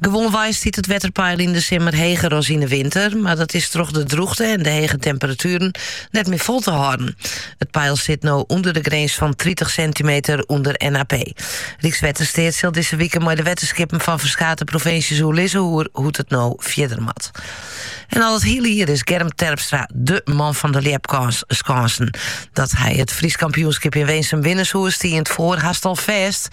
Gewoanwei stiet it wetterpeil yn de simmer heger as yn de winter, mar dat is troch de drûchte en de hege temperatueren net mear fol te hâlden. It peil sit no ûnder de grins fan tritich sintimeter ûnder NAP. Rykswettersteat sil dizze wike mei de wetterskippen fan ferskate provinsjes oerlizze oer hoe't it no fierder moat. En al it hiele jier is Germ Terpstra de man fan de ljepskânsen. Dat hy it Frysk kampioenskip yn Winsum winne soe, stie yn 't foar hast al fêst.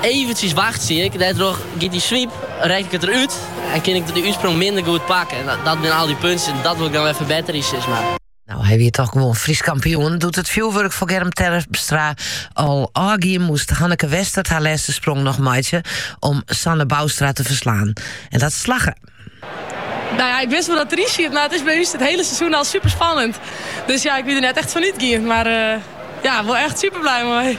Eventsjes wachtsje ik, dêrtroch giet dy swiep, rek ik it der út en kin ik de útsprong minder goed pakken. Dat binne al dy puntsjes, dat wol ik dan wer ferbetterje, sis mar. Nou, hy wie toch gewoan Frysk kampioen. Doe't it fjoerwurk foar Germ Terpstra al ôfgien, moast Hanneke Westert har lêste sprong noch meitsje om Sanne Boustra te ferslaan. En dat slagge. Nou ja, ik wist wol dat it deryn siet, mar it is by ús it hiele seizoen al super spannend. Dus ja, ik wie der net echt fan útgien. Mar uh, ja, wol echt super bliid mei.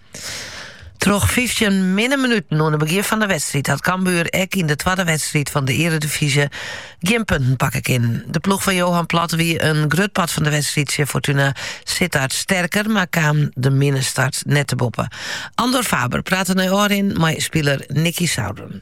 Troch 15 minne minuten oan de begjin fan de wedstrijd hat Cambuur ek yn de twadde wedstrijd fan de Eredivisie gjin punten pakke kinnen. De ploech fan Johan Plat wie in grut part fan de wedstrijd tsjin Fortuna Sittard sterker, maar kaam de minne start net te boppen. Andor Faber prate nei ôfrin mei spiler Nicky Souren.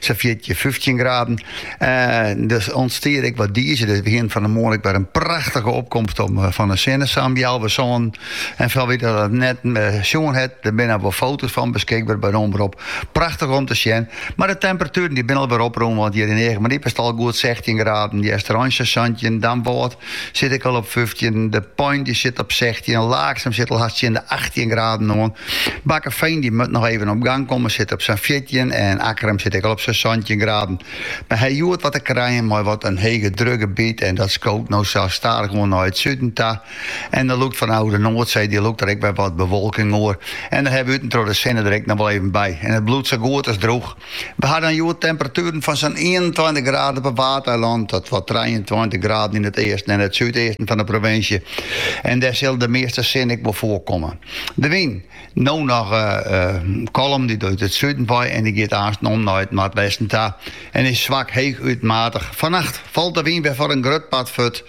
sa fjirtjin, fyftjin graden. En der ûntstie ek wat dize. Dus begjin fan de moarn ek wer in prachtige opkomst om, eh, fan de sinnesamjal. We soenen, en foar wie dat net eh, sjoen hat, der binne wol foto's fan beskikber by de Omrop. Prachtich om te sjen. Mar de temperatueren dy binne alwer oprûn, want hjir yn Eagmaryp is it al goed 16 graden. De Westereen santjin, Damwâld Sit ek al op fyftjin, De Pein dy sit op sechstjin, Laaksum sit al hast tsjin de achttjin graden oan. Bakkefean dy moat noch even op gang komme sit op sa'n fjirtjin en Akkrum sit ek al op sa'n santjin graden. Mar ha hjoed wat te krijen mei wat in hegedrukgebiet en dat skoot no sa stadichoan nei it suden ta en der lûkt fanôf de Noardsee dy lûkt der ek wer wat bewolking oer en dan hawwe we út en troch de sinne der ek noch wol even by en it bliuwt sa goed as drûch. We ha dan hjoed temperatueren fan sa'n ienentweintich graden op 'e Waadeilannen tot wol trijeentweintich graden yn it easten en it súdeasten fan de provinsje en dêr sil de measte sin ek wol foarkomme. De wyn, no noch kalm, dy't út it suden wei en dy giet aansten om nei it noardwesten ta en is swak heechút matich. Fannacht falt de wyn wer foar in grut part fuort.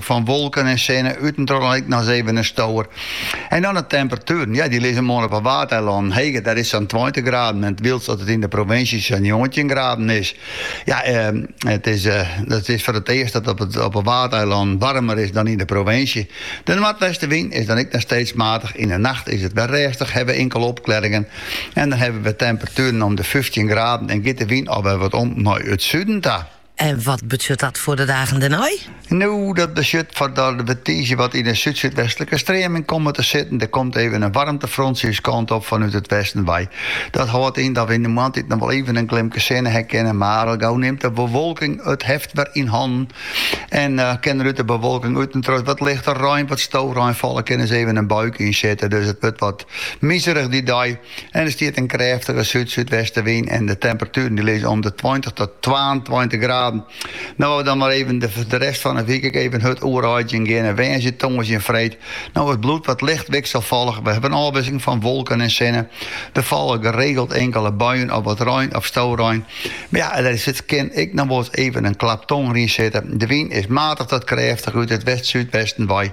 Fan wolken en sinne út en troch dan ek nochris even in stower. En dan de temperatueren. Ja, dy lizze moarn op 'e Waadeilannen heger, dêr is 't sa'n tweintich graden en wylst dat it yn de provinsje sa'n njoggentjin graden is. Ja, it is, it is foar it earst dat op it, op 'e Waadeilannen waarmer is dan yn de provinsje. De noardwestewyn is dan ek noch steeds matich. Yn 'e nacht is it wer rêstich, hawwe we inkele opklearringen en dan hawwe we temperatueren om de fyftjin graden en giet de wyn alwer wat om nei it suden ta. En wat betsjut dat foar de dagen dêrnei? No, dat betsjut foar dat we tiisdei wat yn 'e súdsúdwestlike streaming komme te sitten. Der komt even in warmtefrontsje ús kant op fanút it westen wei. Dat hâldt yn dat we yn de moarntiid noch wol even in glimke sinne ha kinne, mar al gau nimt de bewolking it heft wer yn hannen en kin der út de bewolking út en troch wat lichte rein, wat stôwrein falle, kin ris even in buikje yn sitte. Dus it wurdt wat mizerich dy dei. En der stiet in krêftige súd-súdwestewyn en de temperatueren die lizze om de tweintich tot twaentweintich graden. No't we dan mar even de, de rest fan de wyk ek even hurd oereidzjen geane. Woansdei, tongersdei en freed. No, it bliuwt wat licht wikselfollich. We hebben in ôfwikseling fan wolken en sinne. Der falle geregeld inkele buien of wat rein of stowrein. Maar ja, der is it kin ek noch wolris even in klap tonger yn sitte. De wyn is matig tot krêftig út it west-súdwesten wei.